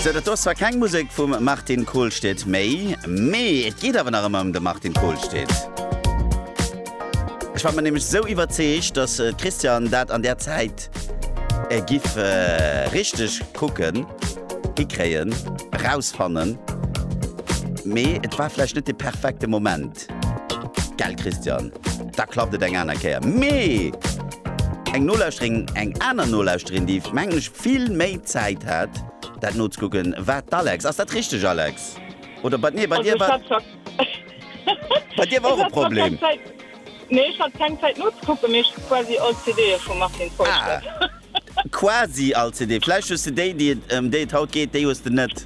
Sou, dat do ass zwar keng Musek vum Martin Kohlstedt méi, mee et geet awer nach ëmmer ëm de Martin Kohlstedt. Ech war mer nämlech sou iwwerzeegt, dass d'Christiane dat an där Zäit giff richteg kucken, hikréien, erausfannen, mee et war vläicht net de perfekte Moment. Respekt! Gell Christian, da klappt et eng aner Kéier. Mee eng Nolauschterin, eng aner Nolauschterin, déi mengen ech vill méi Zäit hat dat nozekucken, war d'Alex. Ass dat richteg Alex? Oder bei, nee bei dir war, bei dir war och e Problem. Nee ech hat keng Zäit nozekucken, mee ech hu quasi all CDe vum Martin Feustel. Ah, quasi all CD. Vläicht hues de déi, déi et, ëm déi et haut geet, déi hues de net.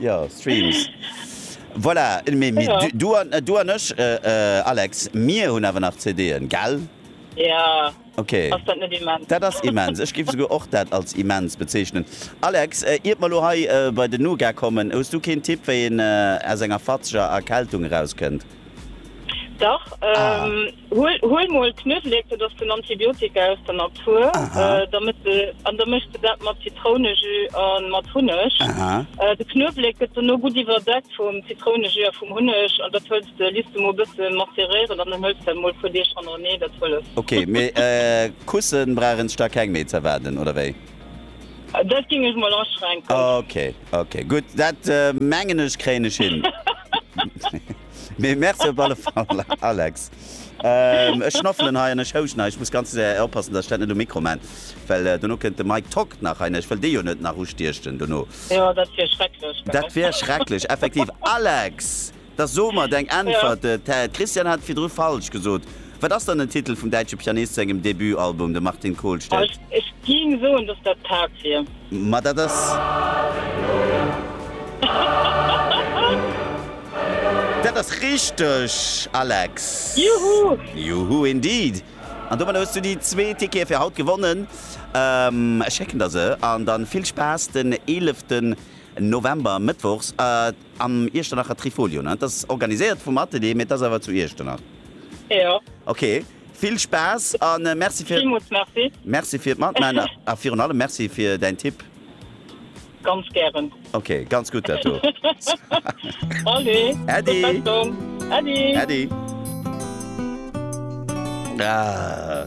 Jo, Streams. Voilà, mee du, du an, du an ech, Alex, mir hunn awer nach CD'en, gell? Jo. Ok. Ass dat net immens? Dat ass immens. Ech géif esouguer och dat als immens bezeechnen. Alex, iert mer lo hei bei den Nougat kommen, hues du keen Tipp, wéi een aus enger fatzeger Erkältung erauskënnt? Dach. Ah. Huel mol Knuewelek, dat ass den Antibiotika aus der Natur, an da méchs de dat mat Zitrounejus a mat Hunneg. De Knuewelek gëtt dono gutt iwwerdeckt vum Zitrounejus a vum Hunneg an dat huels de, liss de mol bësse maceréieren an dann huels de dat mol e puer Deeg hannerneeh, dat hëlleft. Ok, mee Kussen brauch een sech da keng méi ze erwaarden, oder wéi? Dat géing ech mol aschränken. Ok, ok, gutt, dat mengen ech kréien ech hin. Mee merci op alle Fall, Alex. Ech schnoffelen hei an ech houschen hei. Ech muss ganz séier oppassen, dass ech dat net um Mikro maan, well dono kënnt de Mike Tock nach hei. Ech wëll dee jo net nach ustiechen dono. Jo, dat wier schrecklech, gell? Dat wier schrecklech, effektiv. Alex, da so mer deng Äntwert. D'Christiane hat virdru falsch gesot. Wat ass dann den Titel vum däitsche Pianist sengem Debutalbum, de Martin Kohlstedt? Ech géing soen, dass dat d'Haarp wier. Ma dat ass. Dat ass richteg, Alex! Juhu! Juhu indeed! An domadder hues du déi zwee Tickete fir haut gewonnen. Ech schécken der se. An dann vill Spaass den 11 November, Mëttwochs. Am Iechternacher Trifolio, ne? T'ass organiséiert vum Atelier, mee t'ass awer zu Iechternach. Jo. Ok, vill Spaass a merci fir. Villmools merci. Merci fir d'Matman a virun allem merci fir däin Tipp. Ganz gären. Ok, ganz gutt dat do. Allez, Äddi. Gutt Besserung. Äddi. Äddi. Ah.